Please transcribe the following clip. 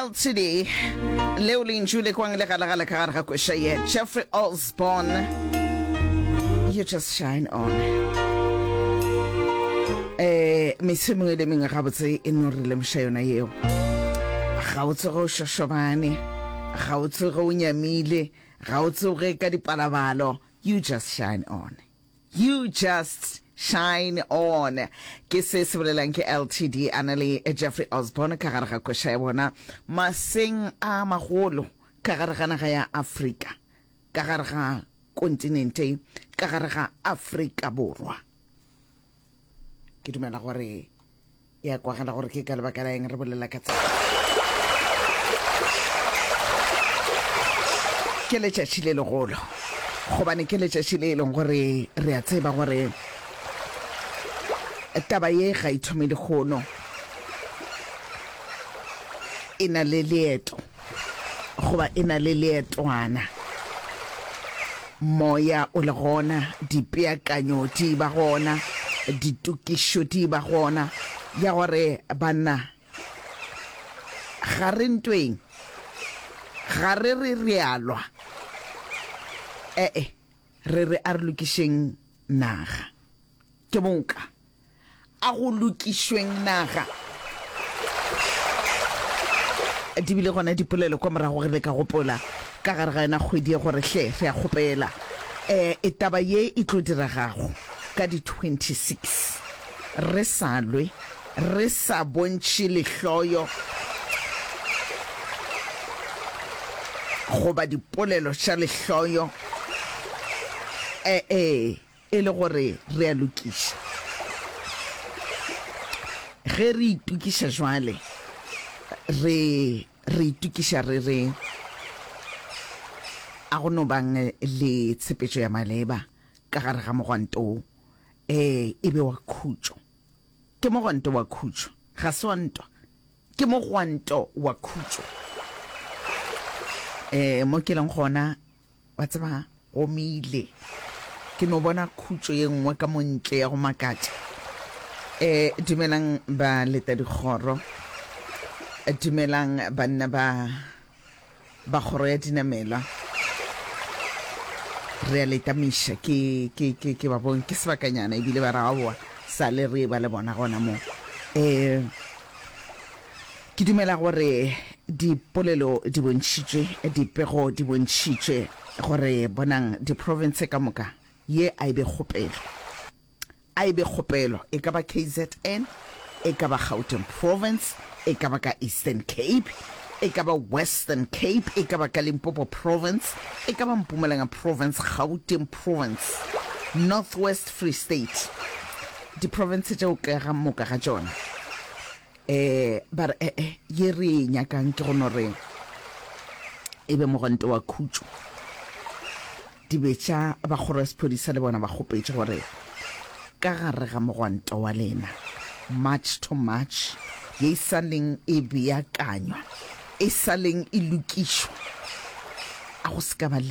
ltd leo lentšu le kwang le galagale ka gare ga kwešwa ye jeffrey osborn you just shine on eh mese mongwe le mengwe gabotse e no re lemoša yona yeo ga o tsoge o šošobane ga o tsoge o nyamile ga o tsoge ka dipalabalo you just shine on You just shine on. Ke se se bolelang ke LTD a na le Jeffrey Osborne ka gare ga koša ya bona maseng a magolo ka gare ga naga ya Afrika, ka gare ga kontinente, ka gare ga Afrika Borwa. Ke dumela gore e a kwagala gore ke ka lebaka la eng re bolela ka tsela ke letšatši le legolo gobane ke letšatši le e leng gore re a tseba gore taba ye ga e thome lehono e na le leeto Goba e na le leetwana. Moya o le gona, dipeakanyo di ba gona, ditokišo di ba gona, ya gore, Banna, ga re ntweng, ga re re re a lwa. E-e, re re a re lokišeng naga. Ke moka. A go lokišweng naga. Di bile gona dipolelo kwa morago, re be ka gopola ka gare ga yona kgwedi ye gore hle re a kgopela um e taba ye e tlo diragago ka di 26 re sa lwe, re sa bontšhe lehloyo goba dipolelo tša lehloyo. E-e. E le gore re a lokišwa. Ge re itokiša jwale, re, re itokiša re re, A go no bang le tshepetšo ya maleba ka gare ga mogwanto wo? Ee, e be wa khutšo. Ke mogwanto wa khutšo, ga se wa ntwa. Ke mogwanto wa khutšo. Ee, mo ke leng gona, Wa tseba, gomile ke no bona khutšo ye nngwe ka montle ya go makatša. E, dumelang ba leta dikgoro. Dumelang banna ba, ba kgoro ya dinamelwa. Re a leta miša, ke, ke, ke, ke ba bone, ke sebakanyana ebile ba re aowa, sale re e ba le bona gona mo. E, Ke dumela gore dipolelo di bontšhitšwe, dipego di bontšhitšwe, gore, bonang, diprofense ka moka, ye a e be kgopelo. A e be kgopelo, e ka ba KZN, e ka ba Gauteng Province, e ka ba ka Eastern Cape, e ka ba Western Cape, e ka ba ka Limpopo Province, e ka ba Mpumalanga Province, Gauteng Province, North West, Free State, diprofense tšeo ka moka ga tšona. Eh, ba re, eh, eh, ye re e nyakang ke go no re e be mogwanto wa khutšo. Dibetša ba kgoro ya sephodisa le bona ba kgopetše gore ka gare ga mogwanto wa lena, March to March, ye e sa leng e beakanywa, e sa leng e lokišwa, a go se ka ba le